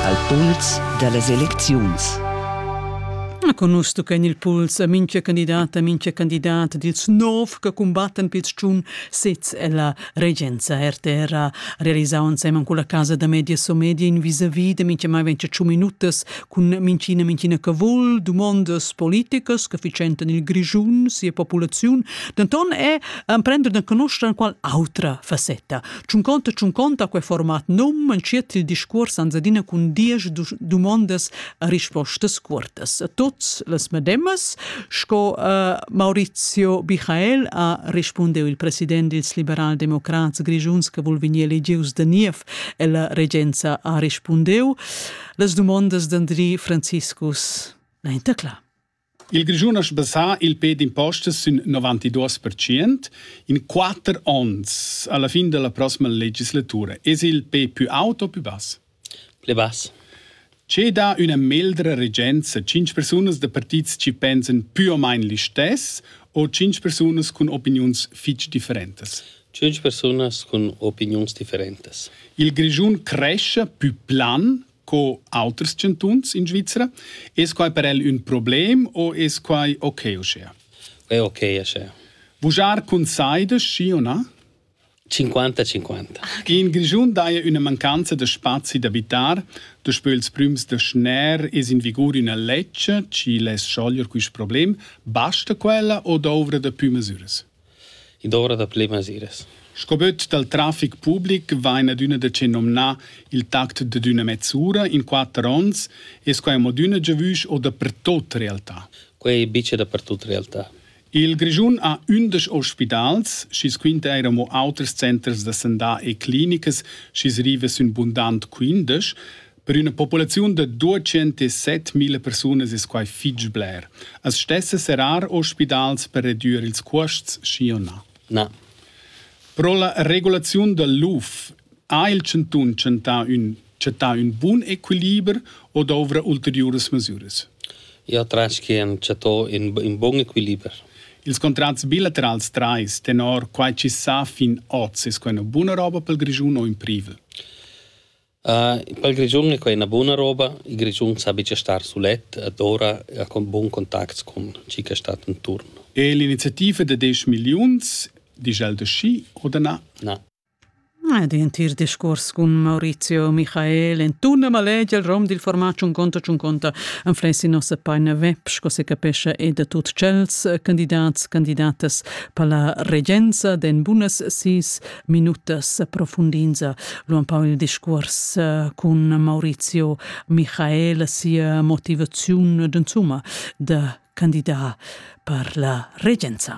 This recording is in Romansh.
al puls da las elecziuns. Na conus tucca en il puls a mincha candidat a mincha candidat dils nov che cumbattan pils tschun sez ella regenza RTR ha realisau ensemen con la casa da media Somedia in vis-a-vis da mincha mai ventia tschun minutas cun minchina minchina che vul dumondas politicas che ficentan il Grischun sia populaziun denton è emprender da conoscere qual autra facetta Tschunconta tschunconta quei format num entschiet il discuors ans adina cun diesch dumondas a rispostas cuortas. A tuts las medemas, sco uh, Maurizio Michael ha rispundiu il president dils liberal-democrats grischuns che vul vegnir elegius da niev e la regenza ha rispundiu. Las dumondas d'Andri Franciscus, la intacla. Il Grischun ha sbassà il pe d'impostas sün novantiduos pertschient in quatter ons alla fin dalla prossima legislatura. Es il pe pü aut o pü bass? Pli bass. Che dà üna meldra regenza? Tschinch persunas da partits chi pensan pü o main listess o tschinch persunas cun opiniuns fich differentas? Tschinch persunas cun opiniuns differentas. Il Grischun crescha pü plan co auters chantuns in Svizra. Es quai per el ün problem o es quai okay uschea? È okay uschea. Vujar cun saida, schi o na? 50-50. In Grischun daja üna mancanza da spazi d'abitar. Daspö ils prüms da schner es in vigur üna lezcha, chi less schoglier quist problem. Basta quella o douvra da pü masüras? id ora da ple masiras. Sco böt dal trafic public vain adüna decennomnà il tact d'üna mezz'ura in quatter ons e sco amo d'üna giavüsch o dapertuot realtà. Quai è bice dapertut realtà. Il Grischun ha ündesch ospidals, schi's quinta eir amo auters centers da sandà e clinicas, schi's riva sün bundant quindesch. Per üna populaziun da 207.000 persunas es quai fich bler. As stessa serrar ospidals per redüer ils cuosts, schi o na? Na. Pro la regulaziun da l'UF ha il chantun chantà ün, chattà ün bun equiliber o dovrà ulteriuras masüras? Io tratg che han chattà ün, ün bun equiliber. Ils contrats bilaterals trais, tenor quai chi sa fin oz, es quai üna buna roba pel Grischun o in privel? Pel Grischun è quai üna buna roba. Il Grischun sa be cha star sulet ed ora ha bun contacts cun chi che stat inturn. E l'iniziativa da desch milliuns, discha'l da schi o da na? Na. Ed intir discuors cun Maurizio Michael entuna malegia al rom dil format Chun conta chun conta anflessi nossa paina web sco se capescha e da tut tschels candidats candidatas per la regenza den bunas sis minutas profundinza lu empau il discuors eh, cun Maurizio Michael sia motivaziun d'insumma da candidar per la regenza.